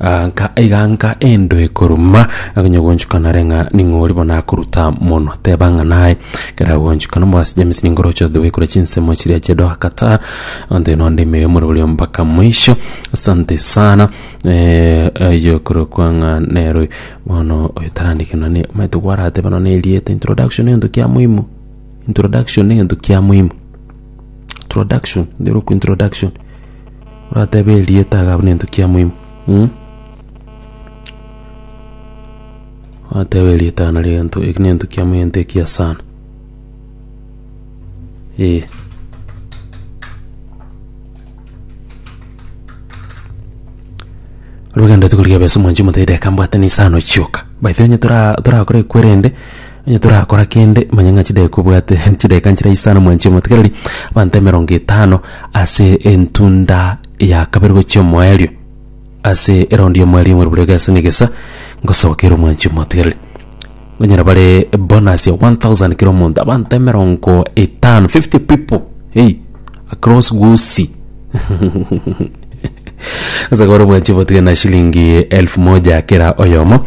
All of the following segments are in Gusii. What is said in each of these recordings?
Agaanka aiganka endo ekoruma, akanyagonchukana are ng'a ning'ori bono akoruta mono. Teba ng'a naye kera agonchukana omobasi James ningoroche othe goikora chinsemo chiria chia Doha Qatar. Onde nonde ime yomura oria mpaka mwisho. Asante sana. Eh, ayo korokwa ng'a nero bono oyo tarandike na ne omanyete gwarateba nonye erieta introduction egento kia muhimu. Introduction egento kia muhimu. Introduction, nderoku introduction. Orateebe erieta iga buna ento kia moimo mm. Orateebe erieta iga nari egento eki na ento kia moimo egento ekiya sana eh. Rirogendereti korigia besa mwanchi motebi reka mbwate nisano chioka. By the way onye tora torakore ekwerende Onye torakora kende, manya ng'a chidakika obwate chidakika nchire isano mwanchie omotikereri abanto emerongo etano ase entunda ya kabere gochia omoerio. Ase eraundi y'omoerio ng'ore bore egesa n'egesa ngosobokeire omwanchie omotigereri. Ngonyora bare bonus ya 1000 kera omonto abanto emerongo etano 50 people hey across Gusii ase kore omwanchie omotigereri na shilingi elfu moja kera oyomo.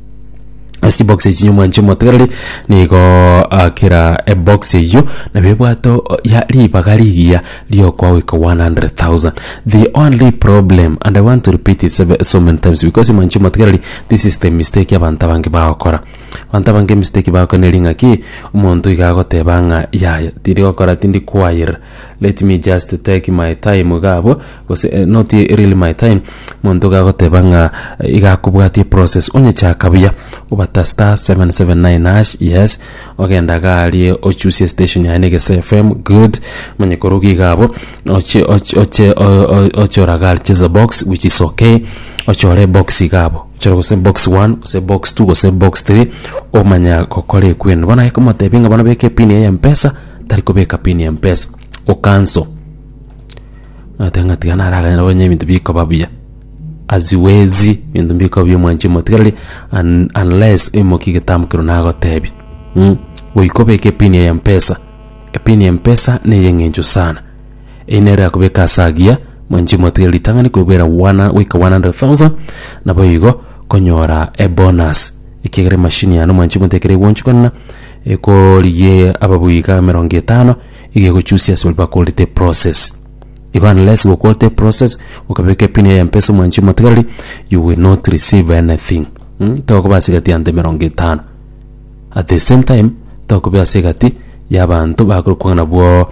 ase box echi nyomwanche omotegereri nigo akera ebox eyio nabio ebwate o- ya ribaga rigiya riokogoika 100,000 the only problem and i want to repeat it seve- so many times because mwanchi omotegereri this is the mistake abanto abange bagokora abanto abange emistake bagokora neri ng'aki omonto iga agoteba ng'a yaya tindi gokora tindi choir. Let me just take my time iga abwo gose eh, not really my time monto gagoteba ng'a eh, iga akobwatie process onyechaka buya obata star 779 hash yes ogenda garie ochusie station yaye negese fm good manye koruga iga abo oche oche oche o- o- oche oragari chese box which is okay ochore box iga abo ochore gose box 1 gose box 2 gose box 3 omanya gokora ekwenu bono aye komotebia ng'a bono beka epini yaye ya mpesa Tari kobeka pin ya mpesa o cancel. Nateba ng'a tiga naraganye nabo onye ebinto bikoba buya. Aziwezi ebinto mbikoba buya mwanchi motigereri un- unless oimokie egetambo keru nagotebia mh goika obeke epin ya mpesa. Epin ya mpesa na eye eng'encho sana. Eyio nere erakobeka ase agiya mwanchi motigereri ritang'ani koigwera one hu- goika one hundred thousand naboigo konyora ebonus ekiagera emachine yane mwanchi motiga ekero egonchukanana. ekorigia ababuya iga emerongo etano iga egochusia ase baria bakorete process igo unless gokorete process okabeka epini ya mpesa omwanchi omotigareri you will not receive anything mh tokoba ase egati ya'nto emerongo etano at the same time tokoba ase egati y'abanto bakorokwa ng'a nabwo.